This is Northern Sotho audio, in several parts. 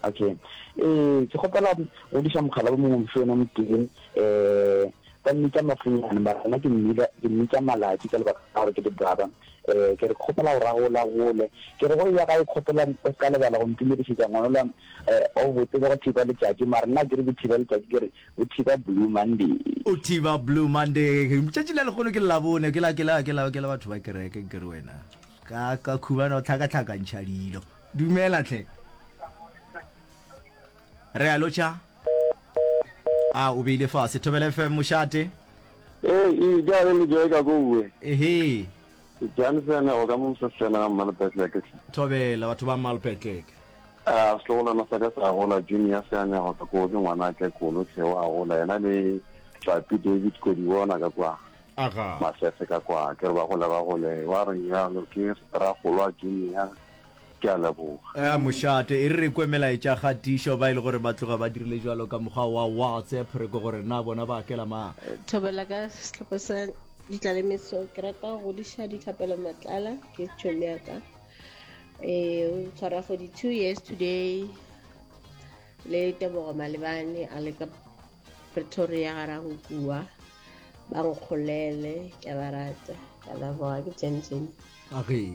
Okay. Eh, ke kgopela go diša mogala bo mongwe mosho yona motee eh ba mmitsa mafunyane ba rena ke mmila ke mmitsa malatsi ka lebaka la gore ke dibraba eh ke re kgopela go ragola gole ke re go ya ga e kgopela o ka lebala go ntumedišetša ngwanola eh o botse go thiba letšatši mara nna ke re bothiba letšatši ke re bothiba blue monday o thiba blue monday tšatši la lekgono ke labone ke la ke la ke la ke la batho ba kereke ke re wena ka ka khubana o tlhakatlhakantšha dilo Dumela hle. Re a lotšha. A o beile fase. Thobela FM mošate. Ee, e ja re le joe ka koue. Ehe. Jansen o ka mo sesena ga Mmalpetleke. Thobela batho ba Mmalpetleke. A setlogolwana sa ka sa gola Junior se anya go ka koo ke ngwana a tlekolo Tlheo a gola yena le Tlapi David Kodibona ka kwa. Aga. Masese ka kwa ke re ba gole ba gole wa re yalo ke Rragolwa Junior. Ke a leboga. Ea mošate, e re re kwe melaetša kgatišo, ba e le gore ba tloga ba dirile bjalo ka mokgwa wa WhatsApp, re kwe gore na bona ba akela mang. Thobela ka sehlopha sa ditlalemeso ke rata go godiša dithapelo matlala ke tšhomi ya ka e tshwara 42 years today le tebogo malebane a le ka Pretoria ga ra go kua ba nkgolele ke ba rata ka la boa ke jenjen age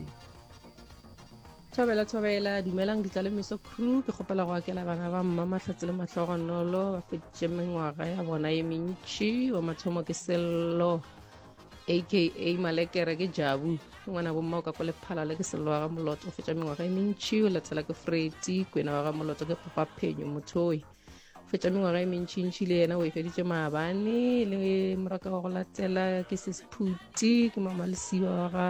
thobela thobela dumelang ditlalemeso crew ke kgopela go akela bana ba mma mahlatse le mahlogonolo ba feditše mengwaga ya bona ye mentši wa mathomo ke sello aka malekere ke jabu ngwana bomma o ka kwa lephalale ke sello wa ga moloto o fetša mengwaga e mentši o latela ke freti kwena wa ga moloto ke kgopa phenyo mothoe fetša mengwaga e mentšintši le yena o e feditše maabane le moraka wa go latela ke sesphuti ke mamalesiwa wa ga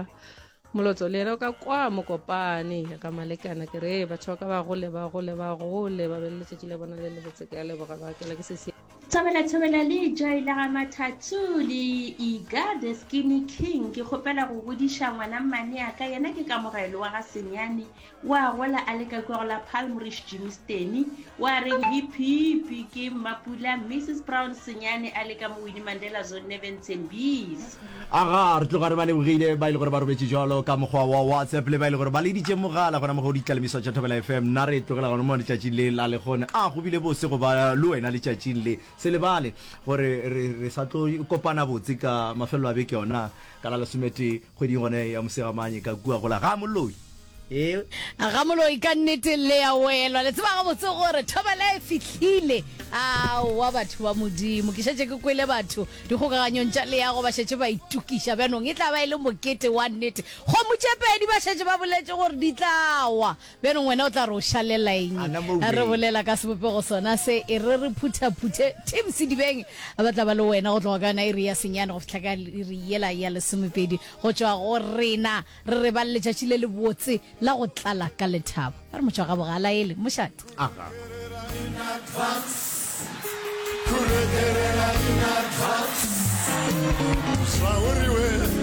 molotso le yena o ka kwa mokopane ya ka malekana ke re batho ba ka ba gole ba gole ba gole ba be le letšatši la bona le lebotse ke a leboga ba kela ke sese thobela thobela le joy la ga mathathu le iga the skinny king ke kgopela go godiša ngwana mmane a ka yena ke kamogelo wa ga senyane O a gola a le ka kua go la Palm Ridge Jimmy Steny o a reng hiphipi ke Mmapula Mrs Brown Senyane a le ka mo Winnie Mandela Zone Nevin Tsembisi. Aga re tloga re ba lebogile ba e le gore ba robetše jalo ka mokgwa wa WhatsApp le ba e le gore ba leditše mogala gona mo go ditlalemiso tša Thobela FM. Nna re tlogela gona mo letšatšing le la lekgone. A go bile bose go ba le wena letšatšing le. Se lebale gore re, re sa tlo kopana botse ka mafelelo a beke yona ka la lesometee. Kgweding gona ye ya Mosegamanye ka kua go la ga Moloi. Ee. A ga Moloi ka nnete le ya welwa. Le tseba gabotse gore thobela e fihlile. Aowa batho ba Modimo. Ke šetše ke kwele batho dikgokaganyong tša leago ba šetše ba itokiša. Bjanong e tla ba e le mokete wa nnete. Kgomo tše pedi ba šetše ba boletše gore di tla wa. Bjano ngwena o tla re o šalela eng? A na mo Ge re ubeng. bolela ka sebopego sona se, e re re phuthaphuthe Tim Sedibeng, ba tla ba le wena go tloga ka yona iri ya senyane go fihla ka iri yela ya lesomepedi go tšwa go rena. Re re ba le letšatši le lebotse la go tlala ka lethabo. A re motšwa ga bogala ele mošate. Aga.